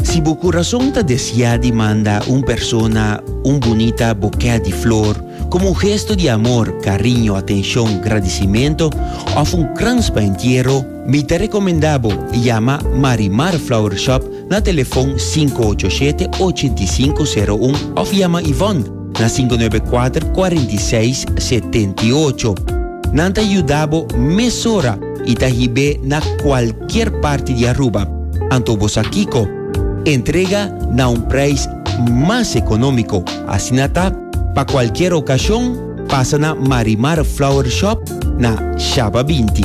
Si bo kurason ta desiá di manda un persona un bunita bokè di flor komo un gesto di amor, kariño, atenshon, gradisimentu òf un krans pa entiero, mi ta rekomendá bo yama Marimar Flower Shop na telefòn sinku ocho shete, ocho i sinku, seru un, òf yama Yvonne, na sinku nuebe kuater kuarenta i seis setenta i ocho. Nan ta yuda bo mesora i ta hib'é na kualkier parti di Aruba. Anto bo sa kiko? Entrega na un preis mas ekonómiko. Asina ta, pa kualkier okashon, pasa na Marimar Flower Shop na Shaba binti.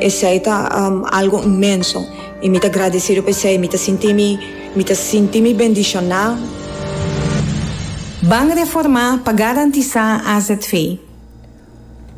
Esei ta algo inmenso i mi ta gradesido pa esei. Mi ta sinti mi, mi ta sinti mi bendishoná. Ban reformá pa garantisá azv.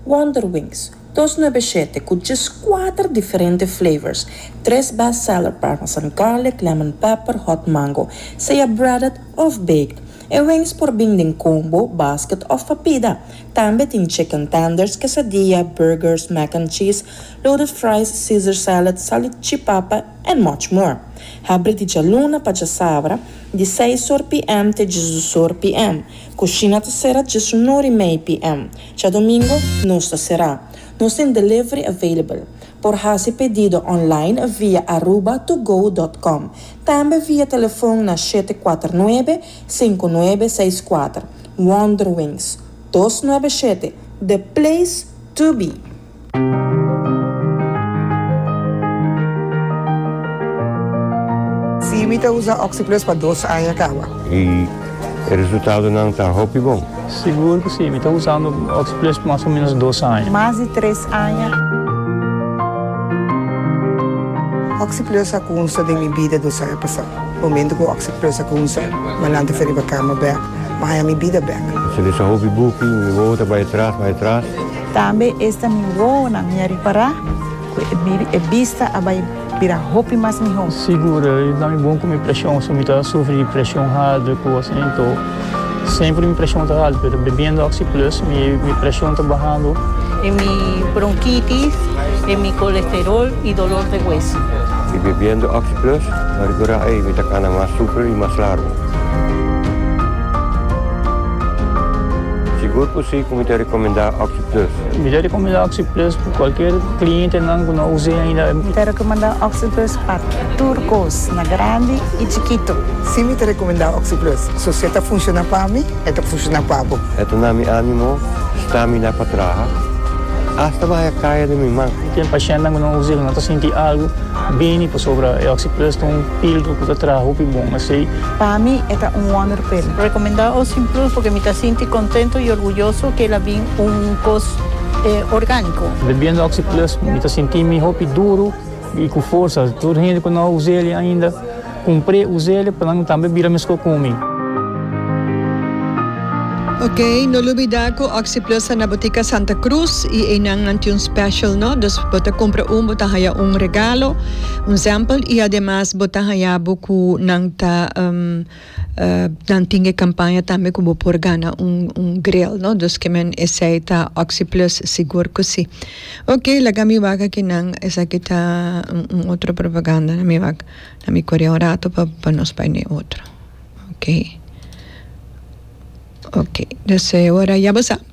Wonderwings, dos nuebeshete ku djes kuater diferente flavors, tres best seller parmesan garlic, lemon pepper, hot mango, sea breaded òf baked. E wings por bin den combo, basket òf papida. Tambe tin chicken tenders, quesadilla, burgers, mac and cheese, loaded fries, Caesar salad, salichipapa and much more. Habri di djaluna pa djasabra, di seis or PM te djisdos or PM. Cushina ta cera djes un or y mei PM. Djadomingo nos ta cera. Nos tin delivery available. Por haci pedido online via aruba2go dot com. Tambe via telefon na shete cuater nuebe, cinco nuebe seis cuater. Wonderwings dos nuebe shete The Place to Be. Si mi ta usa Oxyplus pa dos aña kaba. Y e resultadonan ta hopi bon. Sigur cu si, mi ta usando Oxyplus pa mas o menos dos aña. Mas di tres aña. Oxyplus a cunsta den mi bida dos aña pasado. Momento cu oc se plusa cu un sor, manan ta feriba cama bek, ma haya mi bida bek. Se lesa hopi buki, mi wowo ta bay atras, bay atras. Tambe esta mi wowonan mi a ripara cu e bista a bay bira hopi mas miho. Sigur, i ta mi bon cu mi presion, si mi ta sufri di presion harder cu asina, enton. Semper mi presion ta haltu, pero bebiendo Oxi Plus mi mi presion ta bahando. E mi bronkitis, e mi kolesterol i dolor de hueso. I bebiendo Oxi Plus ta rikurá ei mi ta kana mas super i mas largu. Sigur ku si ku mi ta rekomendá Oxi Plus. Mi ta rekomendá Oxi Plus pa kualker klientenan ku no us'é ainda. Mi ta rekomendá Oxi Plus. Pa tur kos, na grandi i chikitu. Si mi ta rekomendá Oxyplus, so si e ta funshoná pa mi, e ta funshoná pa bo. E ta na mi ánimo, stamina pa traha, asta bahaya kaya den mi man. Ken pashentenan ku no usa e ku no ta sinti algu bini pasobra e Oxyplus ta un píldru ku ta traha hopi bon. Asei. Pa mi e ta un wonder pil. Rekomendá Oxyplus purke mi ta sinti kontentu i orguyoso ku el a bin un kos orgániko. Bebiendo Oxyplus mi ta sinti mi hopi duru. I ku forsa tur hende ku no a usa el ainda kumpr'é usa el pa nan tambe bira meskos ku mi. Ok, no lubidá ku Oxyplus ta na Butika Santa Cruz i einan nan tin un special no, dus bo ta kumpra un bo ta haña un regalo, un sample i ademas bo ta haña bo ku nan ta. Nan tin e campaña tambe cu bo por gana un grill no dos que men esey ta Oxyplus sigur cu si. Ok laga mi wak aki nan esaki ta un otro propaganda na mi wak la mi coria un rato pa nos bay na e otro ok ok deseo ora ya bo sa.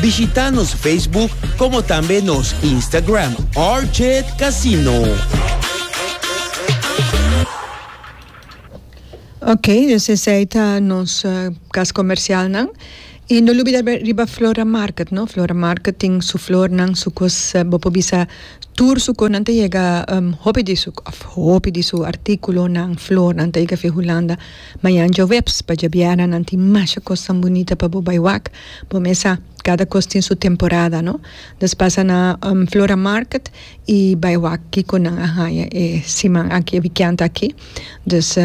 Bishita nos Facebook como tambe nos Instagram RJ Casino. Ok, dus esei ta nos uh, kas komersialnan. I no lubida riba Flora Market, no? Flora Market tin su flornan, su kos, uh, eh, bo bisa tur su konan te llega um, hopi di su, of hopi di su artículo nan, flor nan te llega fi Holanda. Mayan jo webs, pa jabiara nan tin masha kos tan bonita pa bo bai wak. Bo mesa, cada cos tin su temporada no. Nos pasa na Flora Market y bai wak kico nan a haya e siman aki, e wikiand aki. Dus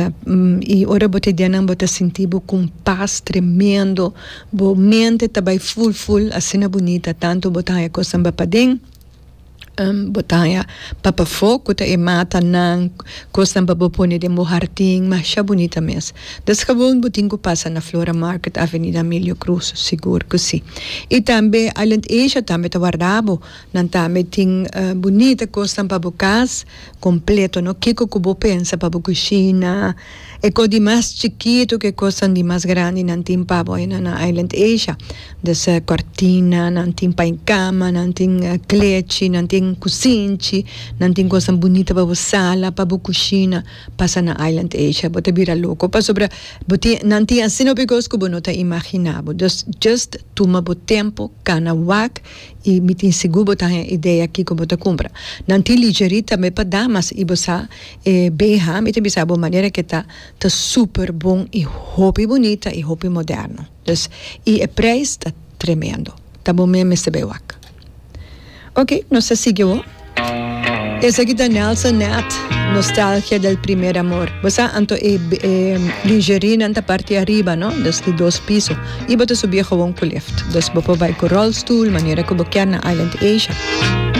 y ora bo ta dianan bo ta sinti bo cu un paz tremendo, bo mente ta bai full full, asina bunita, tanto bo ta haya cosnan bai paden. Botanya papa fo cu ta e mata nan, cosnan pa bo pone den bo hardin, masha bunita mes. Desgewoon bo tin cu pasa na Flora Market, Avenida Emilio Cruz? Sigur cu si. Y tambe Island Asia tambe ta warda bo, nan tambe tin bunita cosnan pa bo cas, completo no, kico cu bo pensa pa bo cushina, E kos di mas chikitu ku e kosnan di mas grandi nan tin pa bo ena nan Island Asia. Desa kòrtina, nan tin pa e kama, nan tin klechi, nan tin kusinchi, nan tin kosnan bunita pa bo sala, pa bo kushina. Pasa na Island Asia bo ta bira loko pasobra bo tin nan tin asina hopi kos ku bo no ta imaginá bo. Dus just tuma bo tempu, kana wak i mi tin sigur bo ta haña idea kiko bo ta kumpra. Nan tin lingerie tambe pa damas i bo sa E beha mi ta bisa bo manera ke ta ta super bon i hopi bunita i hopi moderno dus i e prijs ta tremendo ta bo men mester bay wak ok nos ta sigui awo esaki ta Nelson Neth nostalgia del primer amor bo sa anto e lingerie nan ta parti ariba no dus di dos piso i bo ta subi e gowon ku lift dus bo por bay ku rolstoel manera ku bo kier na Island Asia.